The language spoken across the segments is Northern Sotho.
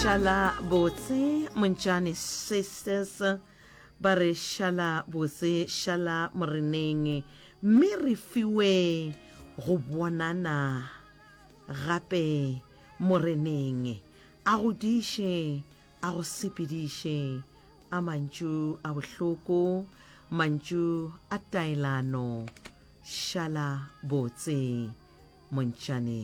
šala botse montšane sisters ba re šala botse šala moreneng mme re fiwe go bonana gape moreneng a go diše a go sepediše a mantšu a bohloko mantšu a taelano šala botse montšane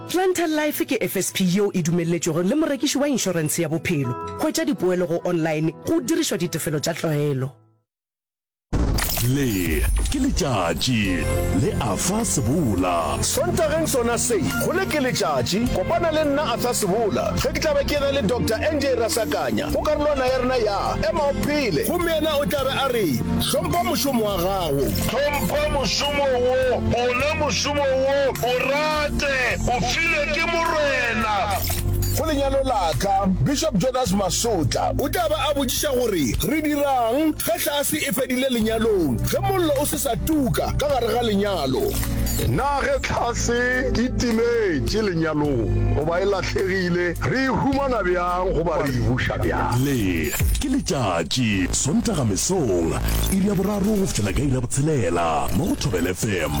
Planter Life ke FSP yeo e dumelletšwego le morekiši wa inšorense ya bophelo. Hwetša dipoelo go online go dirišwa ditefelo tša tlwaelo. Le ke letšatši le Arthur Sebola. Sontageng sona se, go Le ke letšatši, kopana le nna Arthur Sebola ge ke tla be ke re le Doctor NJ Rasakanya go karolwana ya rena ya Ema o Phele gomme yena o tla be a re, Hlompha mošomo wa gago. Hlompha mošomo wo, ona mošomo. Molomo wo o rate o filwe ke Morena. Go lenyalo la ka, Bishop Jonas Masotla o tla ba a botšiša gore re dira'ng ge tlhase e fedile lenyalong, ge mollo o se sa tuka ka gare ga lenyalo, na ge tlhase e timetše lenyalong goba e lahlegile re e humana bjang goba re e buša bjang. Le, ke letšatši, Sontaga mesong, iri ya boraro go fihlela ka iri ya botshelela, mo go Thobela FM.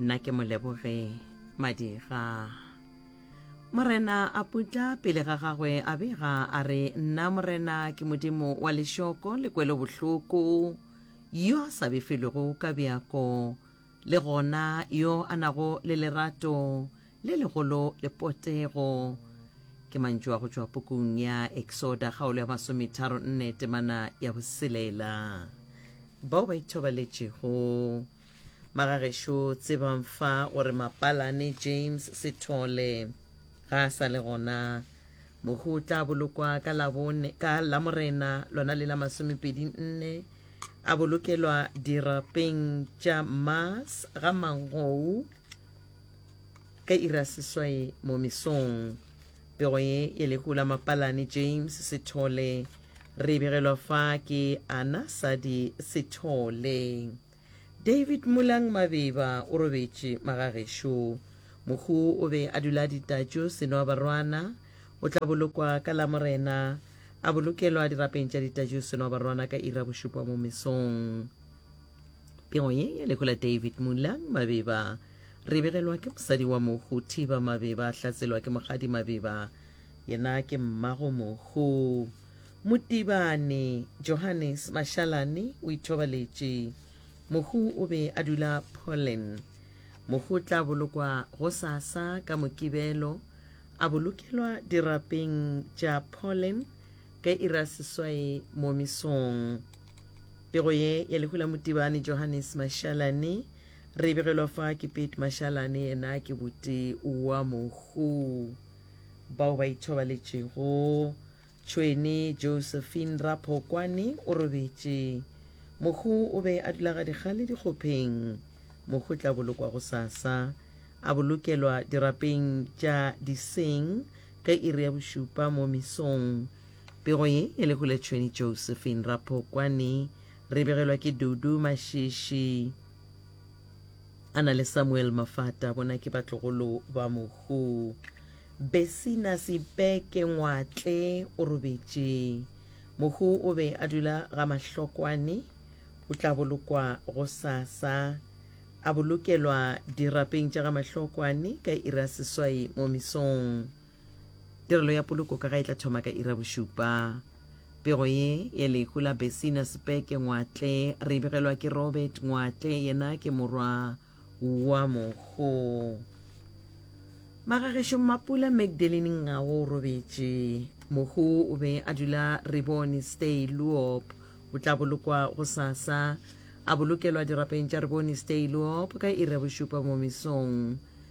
Nna ke Moleboge Madiga. Morena a putla pele ga gagwe a bega a re, Nna Morena ke Modimo wa lešoko le kwelobohloko, yo a sa befelwego ka bjako, le gona yo a nago le lerato le legolo le potego. Ke mantšu a go tšwa pukung ya Eksoda kgaolo ya masometharo nne temana ya boselela. Bao ba ithobaletšego. Magagešo tsebang fa gore Mapalane James Sethole ga a sa le gona. Mohu o tla bolokwa ka Labone ka Lamorena lona le la masomepedi nne a bolokelwa dirapeng tša Mars ga Mangou ka ira seswai mo mesong. Pego ye e lehu la Mapalane James Sithole. Re e begelwa fa ke Ana Sadi Sithole. David Mulang Mabeba o robetše magagešo. Mohu o be a dula ditatšo Senoa Barwana o tla bolokwa ka Lamorena, a bolokelwa dirapeng tša ditatšo Senoa Barwana ka iri ya bošupa mo mesong. Pego ye ya lehu la David Mulang Mabeba re begelwa ke mosadi wa mohu Thiba Mabeba a hlatselwa ke mogadi Mabeba yena ke mmago mohu Motibane Johannes Mashalane o ithobaletše mohu o be a dula Poland mohu o tla bolokwa go sasa ka mokibelo a bolokelwa dirapeng tša Poland ka ira seswae mo mesong Pego ye ya lehu la Motibane Johannes Mashalane re begelwa fa ke Pete Mashalane yena ke bote wa mohu bao ba ithobaletšego. Tšhwene Josephine Raphokwane o robetše. Mohu o be a dula ga dikgale dikgopheng. Mohu tla bolokwa go sasa. A bolokelwa dirapeng tša diseng ka iri ya bošupa mo misong. Pego ye e le Huletšhweni Josephine Raphokwane. Re begelwa ke Dudu Mashishi a na le Samuel Mafata, bona ke batlogolo ba mohu. Besina Sibeke Ngwatle o robetše. Mohu o be a dula ga Mahlokwane, o tla bolokwa go sasa. A bolokelwa dirapeng tša ga Mahlokwane ka iri ya seswai mo mesong. Tirelo ya poloko ka ga e tla thoma ka ira bošupa. Pego ye ye lehu la Besina Sepeke Ngwatle re begelwa ke Robert Ngwatle, yena ke morwa wa mogo. Magagešo Mmapula Magdalene Ngawo o robetše. Mohu o be a dula Rebone Stay Luop. O tla bolokwa go sasa. A bolokelwa dirapeng tša Rebone Stay Luop ka ira bošupa mo mesong.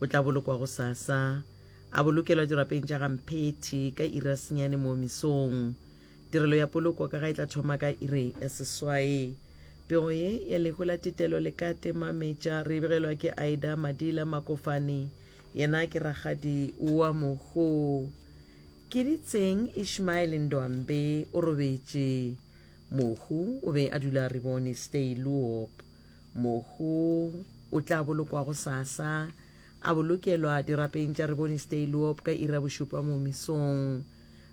O tla bolokwa gosasa. A bolokelwa dirapeng tša ga Mphethi ka iri ya senyane moo mesong. Tirelo ya poloko ka ga e tla thoma ka iri ya seswae. Pego ye ya lehu la Tetelo le ka temametša re e begelwa ke Aida Madila Makofane, yena ke rakgadi wa Mogo. Keditseng Ishmael Ndwambe o robetše. Mogo o be a dula Ribone Stay, Luop. Mohu o tla bolokwa gosasa, a bolokelwa dirapeng tša Rebonistay Luop ka iri ya bošupa mo mesong.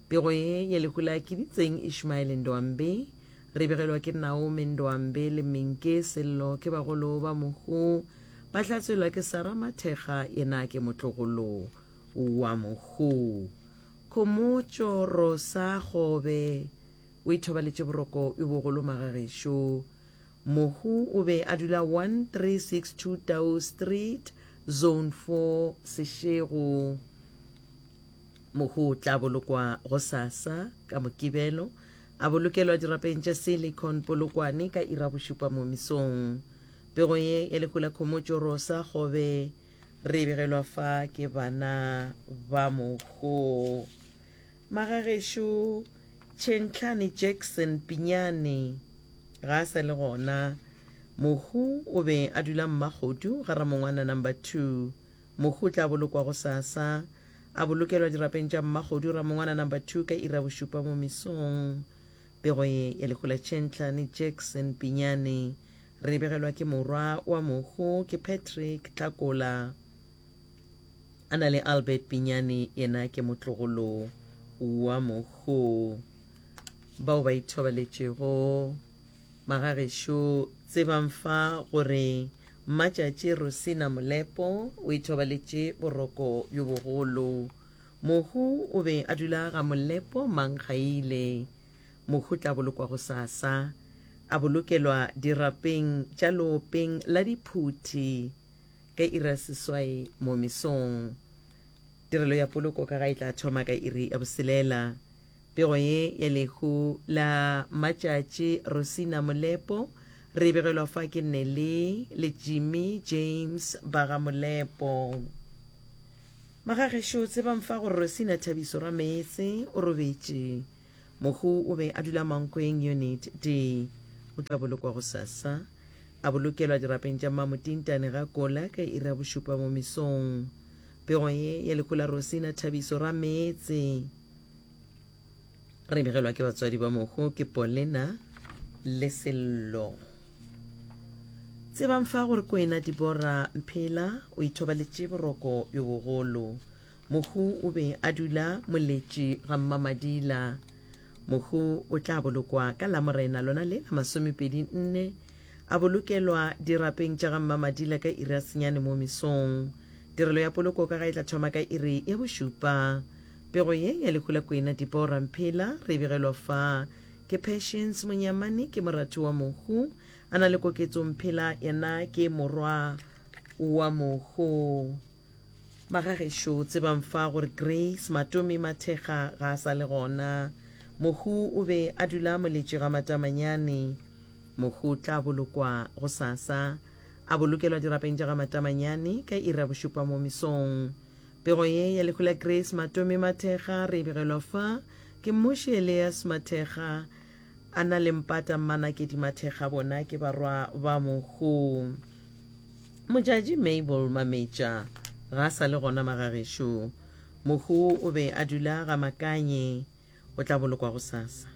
Pego ye ya lehu la Kiditseng Ishmael Ndoambe, re begelwa ke Naome Ndoambe le Minke Sello ke bagolo ba mohu, ba hlatswelwa ke Sarah Mathekga yena ke motlogolo wa mohu. Khomotšo Rosa Kgobe o ithobaletše boroko bjo bogolo magagešo. Mohu o be a dula 1362 Tau Street, Zone 4, Seshego. Mohu o tla bolokwa gosasa ka Mokibelo, a bolokelwa dirapeng tša Silicon Polokwane ka ira bošupa mo mesong. Pego ye ya lehu la Khomotšo Rosa Kgobe re e begelwa fa ke bana ba mohu. Magagešo Tšhentlhane Jackson Pinyane ga a sa le gona. Mohu o be a dula Mmakgodu ga Ramongwana number two. Mohu o tla bolokwa gosasa. A bolokelwa dirapeng tša Mmakgodu Ramongwana number two ka iri ya bošupa mo mesong. Pego ye ya lehu la Tšhentlhane Jackson Pinyane re e begelwa ke morwa wa mohu ke Patrick Tlhakola. a na le albert pinyane yena ke motlogolo wa mogo bao ba ithobaletšego magagešo tsebang fa gore mmatšatši rosina molepo o ithobaletše boroko bjo bogolo mohu o be a dula ga molepo mankgaile mohu tla bolokwa go sasa a bolokelwa dirapeng tša loopeng la diphuthi ka iri ya seswai mo mesong. Tirelo ya poloko ka ga e tla thoma ka iri ya boselela. Pego ye ya lehu la matšatši Rosina Molepo re e begelwa fa ke Nelly le Jimmy James ba ga Molepo. Magagešo tsebang fa gore Rosina Thabiso Rameetse o robetše. Mohu o be a dula Mankweng Unit D. O tla bolokwa gosasa. A bolokelwa dirapeng tša Mamo Tintane ga Kola ka iri ya bošupa mo mesong. Pego ye ya lehu la Rosina Thabiso Rameetse re begelwa ke batswadi ba mohu ke Polena le Sello. Tsebang fa gore Kwena Dibora Mphela o ithobaletše boroko bjo bogolo. Mohu o be a dula moletši ga Mmamadila. Mohu o tla bolokwa ka Lamorena lona le la masomepedi nne, a bolokelwa dirapeng tša ga Mmamadila ka iri ya senyane mo mesong. Tirelo ya poloko ka ga e tla thoma ka iri ya bošupa. Pego ye ya lehu la Kwena Dipoo Ramphela re e begelwa fa. Ke Patience Monyamane, ke morati wa Mohu. A na le Koketso Mphela, yena ke morwa wa Mohu. Ba ga gešo tsebang fa gore Grace Matomi Mathekga ga a sa le gona. Mohu o be a dula moletše ga Matamanyane. Mohu o tla bolokwa gosasa. A bolokelwa dirapeng tša ga Matamanyane ka iri ya bošupa mo mesong. Pego ye ya lehu la Grace Matomi Mathekga re e begelwa fa ke Mmuši Elias Mathekga A na le mpata mma Nakedi Mathekga bona ke barwa ba mohu. Mojadji Mabel Mametša ga a sa le gona magagešo. Mohu o be a dula ga Makanye. O tla bolokwa gosasa.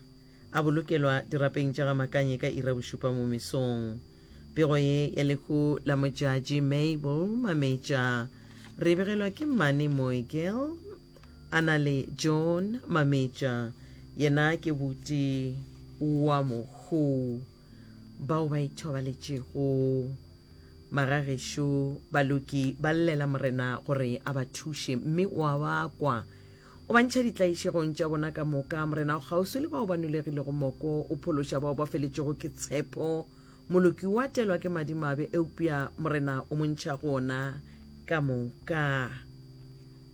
A bolokelwa dirapeng tša ga Makanye ka ira bošupa mo mesong. Pego ye ya lehu la Mojadji Mabel Mametša re e begelwa ke mmane Moegel. A na le John Mametša, yena ke buti wa mokgo bao ba ithobaletšego. Magagešo Baloki ba llela Morena gore a ba thuše, mme o a ba kwa. O ba ntšha ditlaišegong tša bona ka moka. Morena o kgauswi le bao ba nulegilego moko, o phološa bao ba feletšwego ke tshepo. Moloki o a telwa ke madimabe, eupša Morena o mo ntšha go ona ka moka.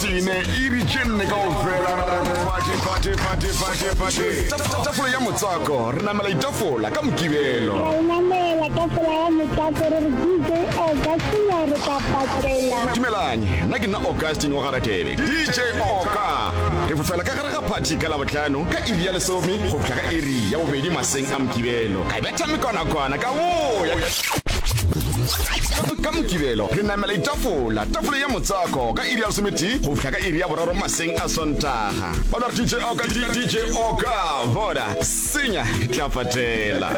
tine iri tše nne kao fela tafola ya motswako re namela itafola ka mokibelo namela tafola ya motswako re re dj augustina re ka patela dumelanye nna ke nna augustin wa garatebe dj oka re fofela ka gare ga phathi ka labotlhano ka iri ya lesome go fihla ka iri ya bobedi maseng a mokibelo ka betha mekonakwana ka boya ka mokibelo re namela itafola tafole ya motswako ka iri ya lesometee go fihla ka iri ya boraro maseng a sontaga bona re dj oka dj oka bona senya re tla patela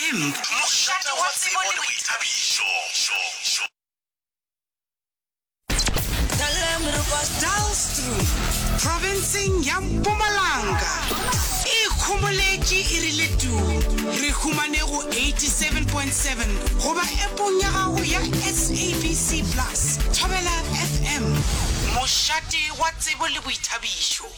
mošate wa tsebo le boithabišo profenseng ya mpumalanga e kgomoletše e rile tu re humane go 87.7 goba epong ya gago ya sabc plus thobela fm mošate wa tsebo le boithabišo